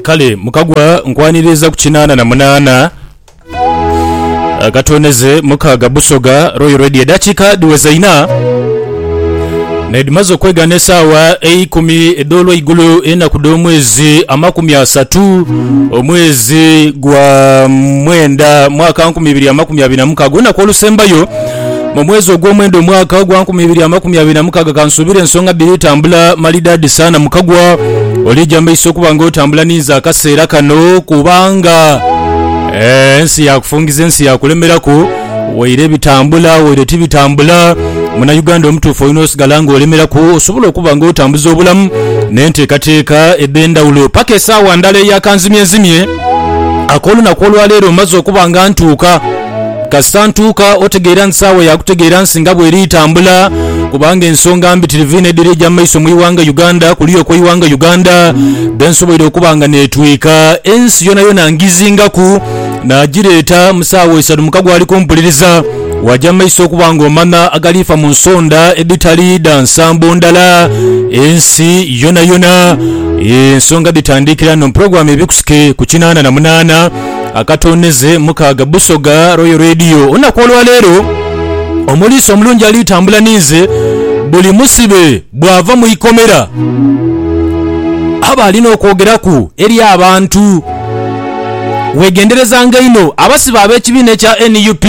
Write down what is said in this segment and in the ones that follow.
Kale mukagwa nkwaniriza ku kinaana na munaana akatooneze mukaaga Busoga Royal Radio. Eddakiika dhiweza ina nedhimaze okwegana esaawa eikumi edh'olweigulo enaku dh'omwezi amakumi asatu omwezi gwa mwenda mwaka nkumi ibiri amakumi abiri na mukaaga olunaku olusembayo Mu mwezi ogw'omwenda omwaka ogwa nkumi ibiri amakumi abiri na mukaaga kansuubira ensonga dhiri tambula malidaadi sana mukagwa olija maiso okuba nga otambula ninze akaseera kano kubanga eh, ensi yakufungiza ensi yakulemeraku waire bitambula waire tibitambula munayuganda omutuufu olina osigala nga olemeraku osobola okuba nga otambuza obulamu n'enteekateeka edh'endhawulo paka esaawa ndala eyakanzimyenzimye ak'olunaku olwaleero mmaze okuba nga ntuuka Kasita ntuuka otegeera nti saawa ya kutegeera nsi nga bweri tambula kubanga ensonga mbitirivu inho edhiri eja maiso mu ighanga Uganda kuliya okwe ighanga Uganda dhensoboire okuba nga netwika ensi yonayona ngizingaku nagireeta mu saawa isatu mukago ali kumpuliriza waja maiso okuba nga omanha agalifa mu nsonda edhitali dha nsambo ndhala ensi yonayona ensonga dhitandikira nho mu program ebikusike ku kinana na munana. Akatoonheze mukaaga Busoga Royal Radio. Olunaku olwaleero omuliisa omulungi ali tambula ninze. Buli musibe bwava mu ikomera aba alina okwogeraku eri abantu. Wegenderezanga inho abasibe ab'ekibiina ekya nup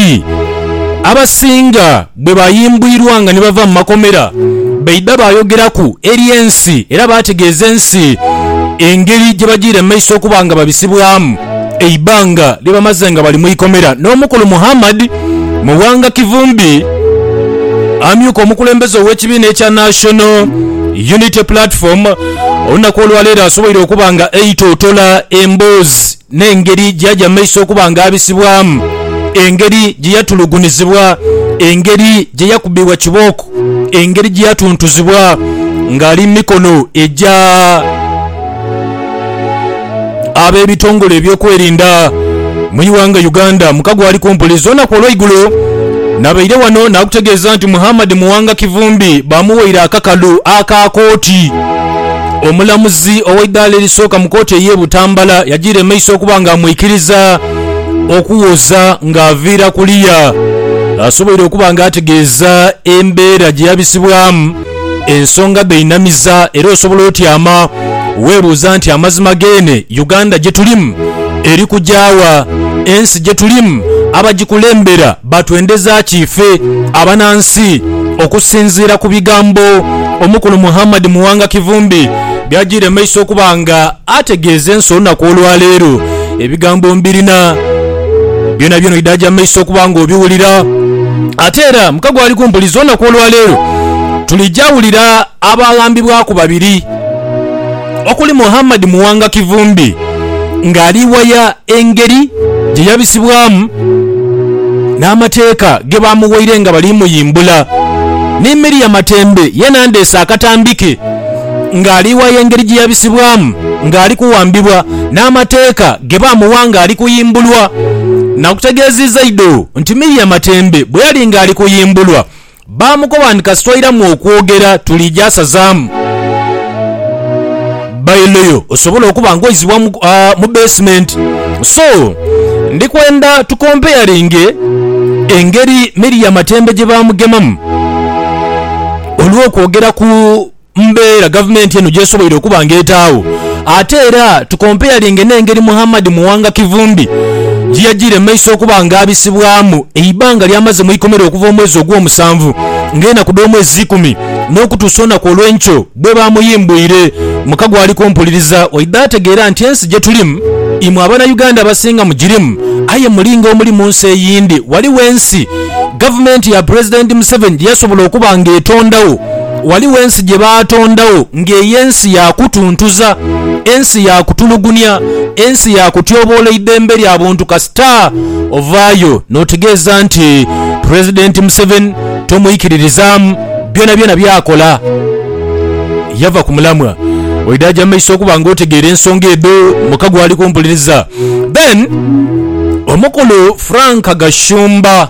abasinga. Bwe baayimbwirwanga ni bava mu makomera, baidha baayogeraku eri ensi era baategeeza ensi engeri gye bajiire mu maiso okuba nga babisibwamu eibanga lye bamaze nga bali mu ikomera. N'omukulu Muhammad Muwanga Kivumbi, amyuka omukulembeze ow'ekibiina ekya National Unity Platform, olunaku olwaleero asoboire okuba nga aitootola emboozi. n'engeri gye yaja mu maiso okuba nga abisibwamu, engeri gye yatulugunizibwa, engeri gye yakubibwa kibooko, engeri gye yatuntuzibwa ng'ali mu mikono egya ab'ebitongole ebyokwerinda mu ighanga Uganda mu kago ali kumpi luzira olunaku olweigulo nabaire wano nakutegeeza nti Muhammad Muwanga Kivumbi bamuwaire akakalu aka kooti. Omulamuzi ow'eidaala erisooka mu kooti ey'e Butambala yajiira emaiso okuba nga amwikiriza okuwoza ng'aviira kuliya asoboire okuba nga ategeeza embeera gye yabisibwamu ensonga dh'einamiza era osobola otyama weebuuza nti amazima geene Uganda gye tulimu eri kugya wa? Ensi gye tulimu abagikulembera Batwendeza ki ife abanansi? Okusinziira ku bigambo omukulu Muhammad Muwanga Kivumbi by'ajiire mu maiso okuba nga ategeeza ensi olunaku olwaleero, ebigambo mbirina byonabyona oidaaja mu maiso okuba nga obiwulira. Ate era mukago ali ku mpuliza olunaku olwaleero tulija wulira abaaghambibwaku babiri. okuli Muhammad Muwanga Kivumbi nga ali waya engeri gye yabisibwamu n'amateeka ge baamuwaire nga bali muyimbula ni Miria Matembe yeena ndeese akatambi ke nga ali waya engeri gye yabisibwamu nga ali kuwambibwa n'amateeka ge baamuwa nga ali kuyimbulwa. Nakutegeeziiza idho nti Miria Matembe bwe yali nga ali kuyimbulwa, Baamukoba nti, Kasita oiramu okwogera tuli gyasazaamu. Bailo yo osobole okuba ng'oizibwa mu beesimenti. So, ndi kwenda tukompeyalinge engeri Miriam atembe gye baamugemamu olw'okwogera ku mbeera gavumenti eno gy'esoboire okuba nga etaagho ate era tukompeyalinge n'engeri Muhammad Muwanga Kivumbi gye yajiire mu maiso okuba nga abisibwamu eibbanga ly'amaze mu ikomera okuva omwezi Ogwomusanvu ng'enaku dh'omwezi ikumi n'okutuusa olunaku olw'enkyo bwe baamuyimbwire mu kago ali kumpuliriza waidha ategeera nti ensi gye tulimu imwe Abanauganda abasinga mugirimu aye mulinga omuli mu nsi eyindi. Ghaligho ensi gavumenti ya Pulezidenti Museveni gye yasobola okuba nga etondagho. Ghaligho ensi gye baatondagho ng'ey'ensi ya kutuntuza, ensi ya kutulugunia, ensi ya kutyoboola eidhembe lya buntu kasita ovaayo n'otegeeza nti Pulezidenti Museveni tomwikiririzaamu byonabyona by'akola. Yava ku mulamwa oidha aja mu maiso okuba ng'otegeera ensonga edho muka gw'ali kumpuliriza. Then Omukulu Frank Gashumba.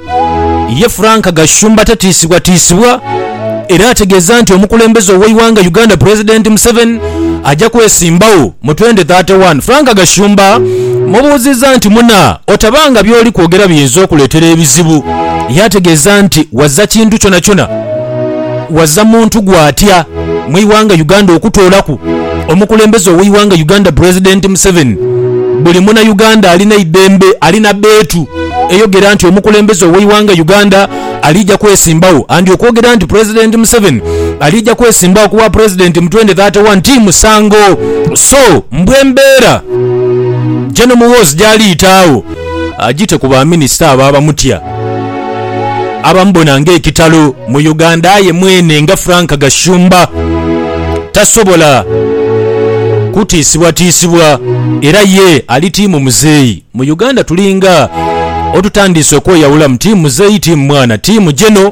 Ye Frank Gashumba tatiisibwatiisibwa era ategeeza nti omukulembeze ow'eighanga Uganda Pulezidenti Museveni aja kwesimbagho mu twendi thate wani. Frank Gashumba mubuuzizza nti muna otaba nga by'oli kwogera biyinza okuleetera ebizibu yaategeeza nti waza kintu kyonakyona waza muntu gw'atya mu ighanga Uganda okutoolaku omukulembeze ow'eighanga Uganda Pulezidenti Museveni buli muna Uganda alina eidembe alina beetu. eyogera nti omukulembeze ow'eighanga Uganda aliija kwesimbawo and okwogera nti Pulezidenti Museveni aliija kwesimbawo ku bwa Pulezidenti mu twende thate wani ti musango so mbu embeera Jeno Muhoozi gy'aliita agho agite ku baminisita abo abamutya abamubona ng'ekitalo mu Uganda aye mwene nga Frank Gashumba tasobola kutiisibwatiisibwa era ye ali tiimu muzeeyi. Mu Uganda tulinga otutandiise okweyawulamu team muzeeyi, team mwana, team Geno,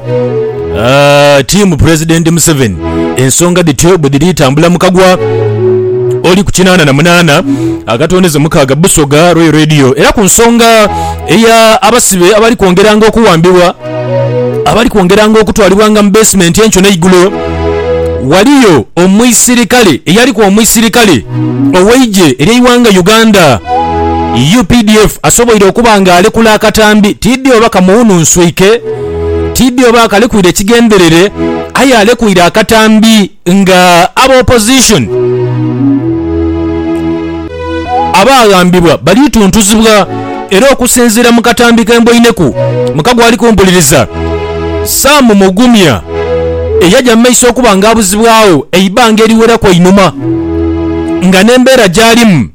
team President Museveni. Ensonga dhityo bwe dhiri tambula mu kagwa oli ku kinaana na munaana akatondeze mukaaga Busoga Royal Radio era ku nsonga eya abasibe abali kwongeranga okuwambibwa, abali kwongeranga okutwalibwanga mu beesimenti enkyo n'eigulo. Waliyo omuisirikale eyaliku omuisirikale ow'eigye ery'eighanga Uganda, updf, asoboire okuba nga alekula akatambi tiidhi oba kamuwununswike, tiidhi oba akalekwire kigenderere aye alekwiire akatambi. Nga aba opposition abaaghambibwa baliituntuzibwa era okusinziira mu katambi ke mboineku muka gwali kumpuliriza, Sam Mugumya eyaja mu maiso okuba nga abuzibwagho eibanga eriweraku einhuma nga n'embeera gyalimu,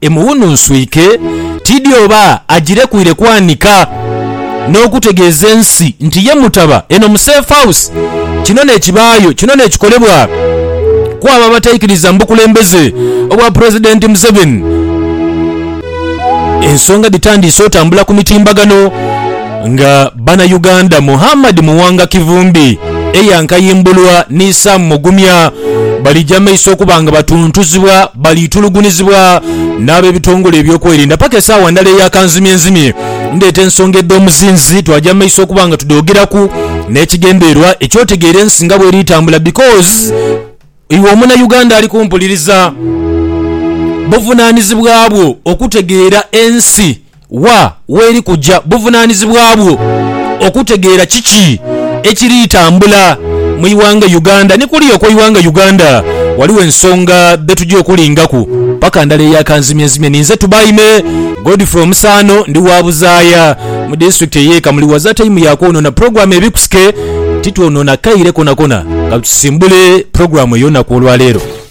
Emuwununswike tiidhi oba agirekwire kwanika n'okutegeeza ensi nti ye mutaba eno mu Safe House. Kino n'ekibaayo kino n'ekikolebwa kw'abo abataikiriza mu bukulembeze obwa Pulezidenti Museveni. Ensonga dhitandiise otambula ku mitimbagano. Nga bana Uganda, Muhammad Muwanga Kivumbi, Eya Nkayimbulwa ni Sam Mugumya balija maiso okuba nga batuntuzibwa, balitulugunizibwa n'abebitongole eby'okwerinda paka esaawa ndala eya kanzimyenzimye. Ndeeta ensonga edh'omuzinzi twaja maiso okuba nga tudhogeraku n'ekigendererwa eky'otegeera ensi nga bweri etambula because iwe omuna Uganda ali kumpuliriza buvunanizibwa bwo okutegeera ensi. Wa w'eri kuja buvunaanizibwa bwo okutegeera kiki ekiri tambula mu ighanga Uganda. Ni kuliya okw'eighanga Uganda ghaligho ensonga dhe tuja okulingaku paka ndala eya kanzimyenzimye. Ni nze Tubaime Godfrey Omusaano, ndi wa Buzaaya mu disitulikiti ey'e Kamuli. Waza taimu ya kwonoona pulogulaamu ebikusike, titwonoona kaire konakona. Ka tusimbule pulogulaamu ey'olunaku olwa leero.